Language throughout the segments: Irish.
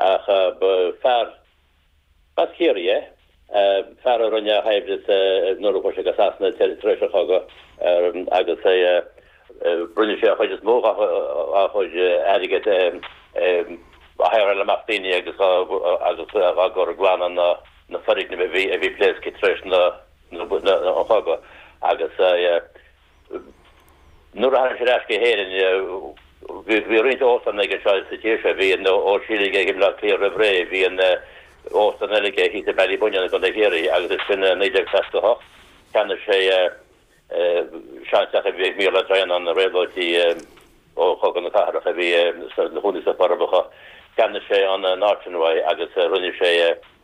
Ach ba fear as Ciarraí é, fear a rinne a shaibhreas nuair a chuaigh sé go Sasana tar éis an chogaidh agus rinne sé an chuid is mó dá chuid airgid ag haighreáil amach daoine agus á gcur ag glanadh na foirgnimh a bhí pléasctha tar éis an chogaidh. Nuair a tháinig sé ar ais go hÉirinn, bhí roinnt óstán aige anseo sa tír seo. Bhí an t-Aisling aige i mBleá Cliath roimh ré, bhí an óstán eile aige thíos i mBallybunnion i gContae Chiarraí agus ansin i 1968 cheannaigh sé seanteach a bhí ag muintir Dhroighneáin réabhlóidí ó Chogadh na Cathrach a bhí ina gcónaí sna Forbacha. Cheannaigh sé an áit uathu agus rinne sé.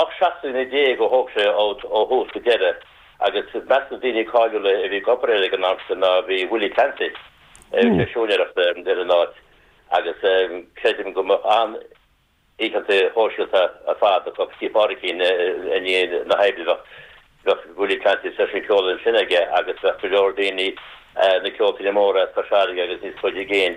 Ocht seachtaine déag a thóg sé ó thús go deireadh agus i measc na daoine cáiliúla a bhí ag obair air ag an am sin ná bhí Willie Clancy, rinne sé siúinéireacht ar an áit agus creidim go mbíodh an-oícheanta shóisialta ar fad acu Tigh Phádraicín i ndiaidh na hoibre, bhíodh Willie Clancy seisiún ceoil ansin aige agus bhíodh go leor daoine, na ceoltóirí móra as Cois Fharraige agus níos faide i gcéin,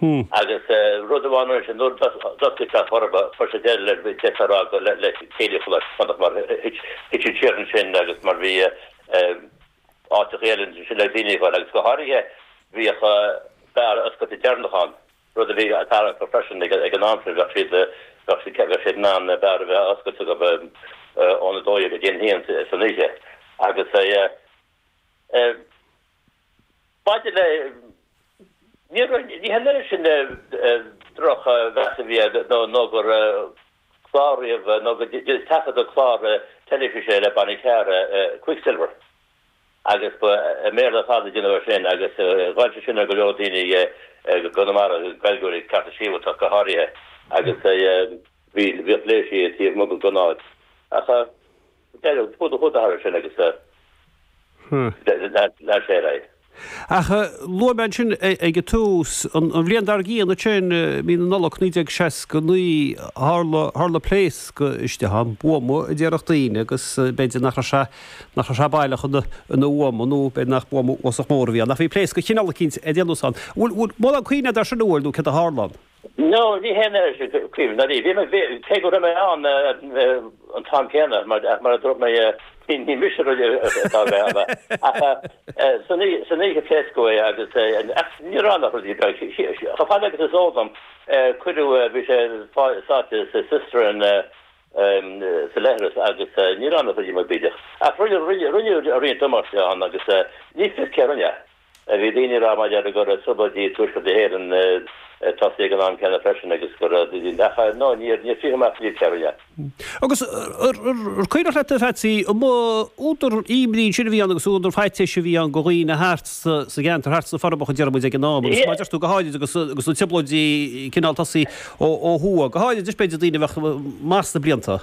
Hm. Agus rud amháin air sin, nuair d'oscail sé a chorp, fuair sé deireadh leis, bhí deifir á cur le céilíocht leis, fanacht mar thit siad siar ansin agus mar bhí áit sa Ghaelainn ansin le daoine a cheiliúradh agus go háirithe bhíodh beár oscailte deireanach ann, rud a bhí á dtarraingt acu freisin ag an am sin, bheadh siad, bheadh siad in ann beár a bheith oscailte acu óna dó dhéag go dtí an haon san oíche agus eh. Maidir le ní raibh sin, drochmheas a bhí air nó gur cláraíodh nó gur taifeadadh clár teilifíse le Bunny Carr, Quicksilver, agus ba i mBéarla ar fad a déanadh é sin agus ghoill sé sin ar go leor daoine i gConamara, Gaeilgeoirí cearta sibhialtach go háirithe, agus bhí léirsiú taobh amuigh den ionad ach. Deireadh. Thug a chuid aire sin agus lean sé ar aghaidh. Ach luaigh mé ansin ag an tús, an bhliain dár gcionn, ansin, mí na Nollag 1969, tharla pléasc istigh ann, buama a déarfadh daoine agus b'fhéidir nach raibh sé, nach raibh sé baileach ina bhuama nó b'fhéidir nach buama uafásach mór a bhí ann ach bhí pléasc de chineál eicínt a déanadh ann. An bhfuil, an bhfuil mórán cuimhne agat ar sin bhuel nó céard a tharla ann? No, níl aon chuimhne agam. Cé go raibh mé ann an t-am céanna, mar a dúirt mé, ní mise a rinne é. San oíche pléascadh é agus ach ní raibh ann ach rud beag. Chomh fada agus is eol dom, cuireadh, bhí sé sáite sa cistern sa leithreas agus ní raibh ann ach rud beag bídeach. Ach rinneadh roinnt damáiste ann agus ní fios cé a rinne é. Bhí daoine ag rá, maidir, go raibh trioblóidí i dTuaisceart na hÉireann ag tosaí ag an am céanna freisin agus go raibh, ach ar ndóigh níor frítheadh amach cé a rinne. Agus ar cuimhneach leat, a Pheatsaí, an mb'údar ímní ansin a bhí ann agus údar faitíois a bhí ann go dhaoine thart sa gceantar thart sna Forbacha, déarfaidh muid ag an am, agus mar a deir tú go háirid agus na trioblóidí cineál tosaigh ó thuaidh, go háirid, b'fhéidir daoine a bheadh maith sna blianta.